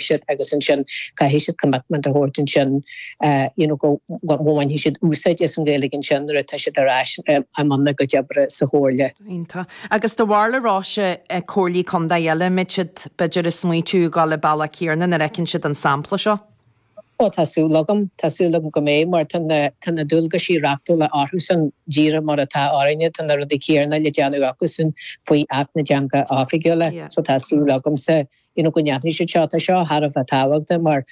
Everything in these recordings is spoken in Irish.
siad agus ansin caithfidh siad commitment a thabhairt ansin you know go bhfaigheann siad úsáid as an Ghaeilge ansin nuair atá siad ar ais i mbun a gcuid oibre sa Chomhairle. Iontach. Agus dá mba rud é, a Róise, comhairlí contae eile go mbeidh siad b'fhéidir ag smaoitiú ag dul an bealach céanna nuair a fheiceann siad an sampla seo. Bhuel tá súil agam, tá súil agam go mbeidh mar tá na tá na dualgaisí reachtúla orthusan díreach mar atá orainne, tá na rudaí céanna le déanamh acusan faoi Acht na dTeangacha Oifigiúla so tá súil agamsa you know go ndéanfaidh siad seo. Tá seo thar a bheith tábhachtach mar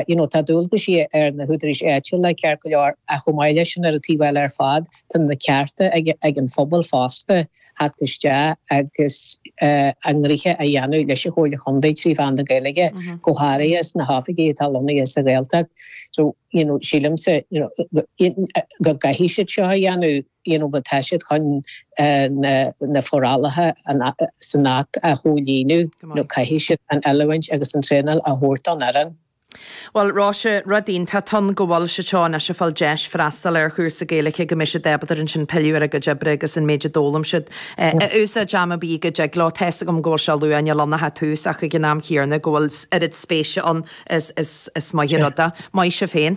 you know tá dualgaisí ar na húdaráis áitiúla ceart go leor ach chomh maith leis sin ar an taobh eile ar fad tá na cearta ag, ag an phobal fosta a theacht isteach agus uh, a ngnoithe a dhéanamh leis an Chomhairle Chontae trí mheán na Gaeilge mm -hmm. go háirithe sna hoifigí atá lonnaithe sa Ghaeltacht. So you know sílimse you know, go gcaithfidh siad seo a dhéanamh dhéanamh má tá siad chun na forálacha san Acht a chomhlíonadh nó caithfidh siad an oiliúint agus an traenáil a thabhairt don fhoireann. Bhuel, Róise, rud iontach ann go bhfuil siad seo anois ag fáil deis freastal ar chúrsa Gaeilge go mbeidh siad ábalta ansin pilleadh ar a gcuid oibre agus an méid a d'fhoghlaim siad a úsáid am ar bith go dtig leo. Tá's agam go bhfuil sé luath, níl ann ach tús ach ag an am céanna go bhfuil oiread spéise ann is maith an rud é. Maith sibh féin.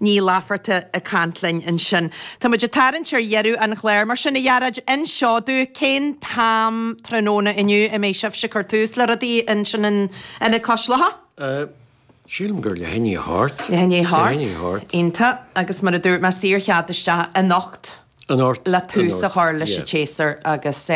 Ní Laifeartaigh ag caint linn ansin. Tá muid ag tarraingt ar dheireadh an chláir, mar sin, a Ghearóid, inis dúinn cén t-am tráthnóna inniu a mbeidh sibhse ag cur tús le rudaí ansin in Ionad Cois Locha? Sílim gur leath i ndiaidh a hocht. Leath i ndiaidh a hocht. Iontach, agus mar a dúirt mé, saor chead isteach anocht. le tús a chur leis an tséasúr agus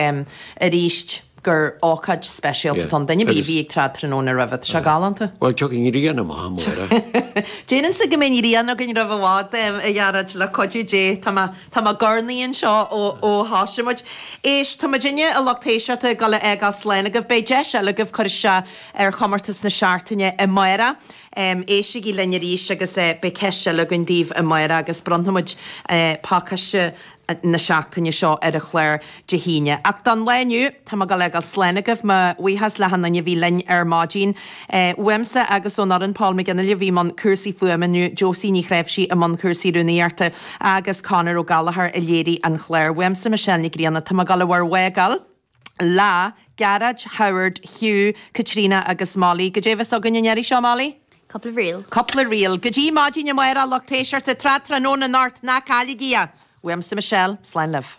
arís gur ócáid speisialta do dhuine ar bith a bhí ag tráth tráthnóna roimhe. Tá sé galánta. Bhuel, tiocfaidh grian amach amuigh. Déan cinnte go mbeidh grian againn roimh i bhfad, a Ghearóid, le cuidiú Dé. Tá mé ag gornaí anseo ó thosaigh muid. Éist, tá muid muidinne, a lucht éisteachta, ag gabháil a fhágáil slán agaibh. Beidh deis eile agaibh cur isteach ar chomórtas na seachtaine amárach. Éistigí linn arís agus beidh ceist eile againn daoibh amárach agus bronnfaimid pácaiste na seachtaine seo ar an chlár Dé hAoine. Ach don lá inniu, tá mé ag gabháil a fhágáil slán agaibh, mo bhuíochas le hachan duine a bhí linn ar maidin. Uaimse agus ón fhoireann, Paul McGinley a bhí i mbun cúrsaí fuaime inniu, Josie Ní Chreimhsí i mbun cúrsaí rúnaíochta agus Conall Ó Gallchóir a léirigh an chlár. Uaimse, Michelle Nic Grianna, tá mé ag gabháil do bhur bhfágáil. Le Gearóid, Howard, Hugh, Caitríona agus Mollie. Goidé a bheas againn an iarraidh seo, Mollie? Cúpla ríl. Cúpla ríl. Go dtí maidin amárach, a lucht éisteachta, tráth tráthnóna anocht, ná cailligí é. Uaimse, Michelle, slán libh.